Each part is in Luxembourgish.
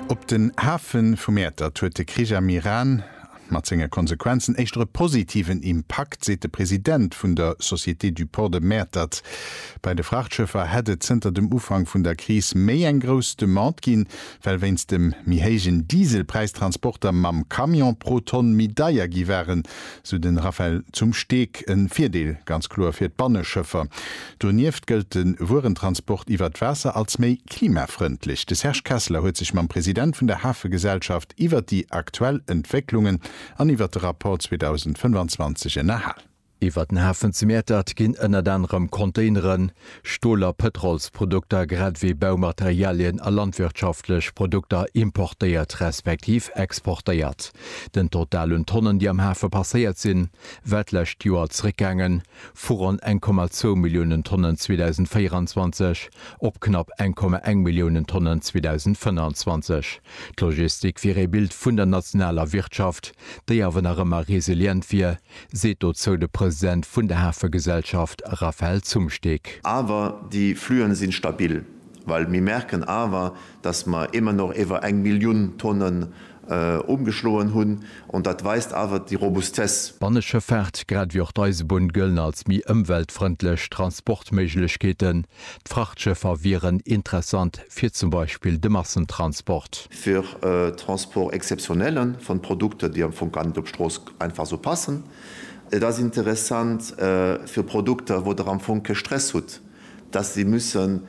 Op den Hafe vu Mäertert huet de Krich am Iran mat senge Konsequenzen éischter e positiven Impakt, seet de President vun der Société du Port de Mäertert. Bei de Frachtschëffer hätt et zënter dem Ufank vun der Kris méi eng grouss Demande ginn, well wéinst dem méi héijen Dieselpräis d'Transporter mam Camion pro Tonn méi deier gi waren, sou de Raphaël zum Steg. E Virdeel ganz kloer fir d'Banneschëffer. Donieft gëllt de Wuerentransport iwwert d'Waasser als méi klimafrëndlech. De Serge Kesseler huet sech mam President vun der Hafegesellschaft iwwert déi aktuell Entwécklungen an iwwert de Rapport 2025 ënnerhal. Iwwert den Hafen zu Mäertert ginn ënnert anerem Containeren, Stol a Pëtrolsprodukter, grad ewéi Baumaterialien a landwirtschaftlech Produkter importéiert respektiv exportéiert. Den Total un Tonnen, déi am Hafe passéiert sinn, war d'lescht Joer zeréckgaangen, vu ronn 1,2 Milliounen Tonnen 2024 op knapp 1,1 Milliounen Tonnen 2025. D'Logistik wier ee Bild vun der nationaler Wirtschaft, déi awer nach ëmmer resilient wier, seet dozou de President vun der Hafegesellschaft Raphaël Zumsteeg. Awer déi Fluen sinn stabil, well mir merken awer, dass mer émmer nach iwwer eng Millioun Tonnen Umgeschloen hunn, an dat weist awer déi Robustesse. D'Banneschëffaart, grad ewéi och d'Eisebunn, gëllen als méi ëmweltfrëndlech Transportméiglechkeeten. D'Frachtschëffer wieren interessant fir zum Beispill de Massentransport. Fir Transport exceptionnelle vun Produkter, déi am Fong gar net op d'Strooss einfach esou passen. Et ass interessant fir Produkter, wou der am Fong kee Stress hutt, dass si müssen.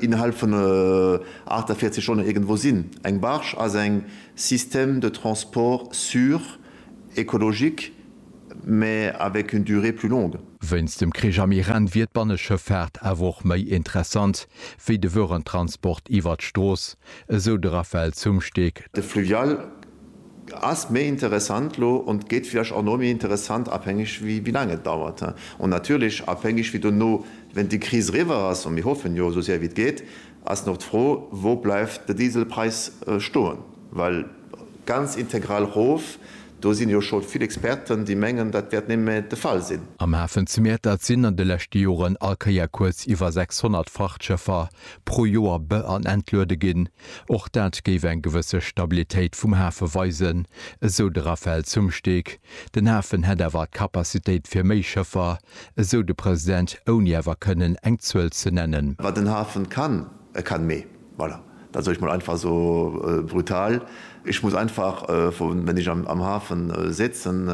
innerhalb vun 48 Stonnen iergendwou sinn. Eng Barge ass eng système de transport sûr, écologique, mais avec une durée plus longue. Wéinst dem Krich am Iran wier d'Banneschëffaart awer och méi interessant wéi de Wörentransport iwwert d'Strooss, esou de Raphaël Zumsteeg. De Fluvial Ass méi interessant lo und gét vielleicht auch no méi interessant, abhängig wie wie lang et dauert und natürlich abhängig wie dono wenn déi Kris eriwer ass, und mir hoffen jo esou sehr wie et gét, ass noch d'Fro wou bleiwt de Dieselpreis stoen, well ganz integral rof, do sin jo scho vill Experten déi mengen dat wärt némme de Fall sin. Am Hafen zu Mäertert sinn an de leschte Joren all Kéier kuerz iwwer 600 Frachtschëffer pro Joer be an entluede ginn. Och dat géif eng gewësse Stabilitéit vum Hafe weisen, esou de Raphaël Zumsteeg. Den Hafen hätt awer d'Capacitéit fir méi Schëffer, esou de President, ouni awer kënnen eng Zuel ze nennen. Wat den Hafen kann, e kann méi. Voilà, dat soe ech mol einfach esou brutal. Ech muss einfach, wann ech am Hafen sitzen,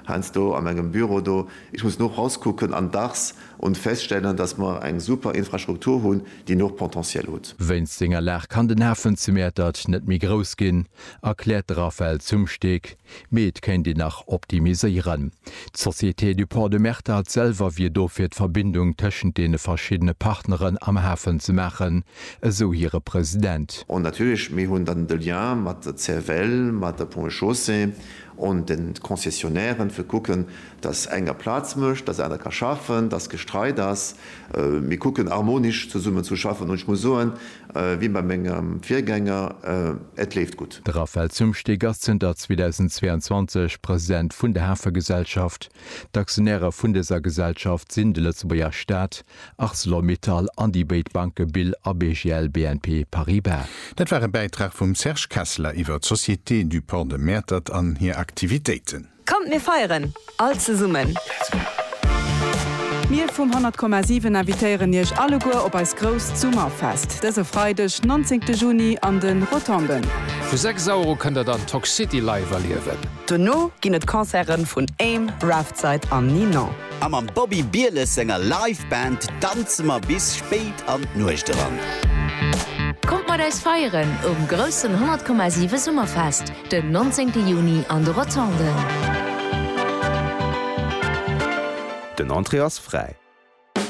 heiansdo a mengem Büro do, ech muss no rauskucken an dacks Und feststellen, dass mer eng super Infrastruktur hunn, déi nach Potentiel hutt. Wéinst senger Lag kann den Hafen zu Mäertert net méi grouss ginn, erkläert de Raphaël Zumsteeg, mee et kéint een nach optimiséieren. D'Société du Port de Mäertert selwer wier do fir d'Verbindung tëschent deene verschiddene Partneren am Hafen ze maachen, esou hire President. Und natierlech, mir hunn dann de Lien mat der CFL, mat der Ponts et Chaussées und den Concessionären, fir kucken, dass enger Plaz mécht, dass aner ka schaffen, dass Gestreit ass, mir kucken harmonisch zesummen zu schaffen an ech muss soen, wéi bei mengem Virgänger, et leeft gutt. De Raphaël Zumsteeg ass zënter 2022 President vun der Hafegesellschaft. D'Aktionäre vun dëser Gesellschaft sinn de Lëtzebuerger Staat, Arcelor Mittal an déi béid Banke Bill a BGL BNP Paribas. Dat war e Bäitrag vum Serge Kesseler iwwer d'Société du Port de Mäertert an hir Aktivitéiten. Kommt mir feieren all zesummen! Mir vum 100,7 invitéieren iech alleguer op eist grousst Summerfest dëse Freideg 19 Juni an de Rotonden. Vu 6 Auer u kënnt der dann Toxcity live erliewen. Dono ginn et Concerten vun Aim, Raftside an Ninon. A mam Bobby Bieles senger Live Band danze mer bis spéit an d'Nuecht eran. Kommt mat eis feieren um groussen 100,7 Summerfest! Den 19 Juni an de Rotonden. Den Entrée ass fräi.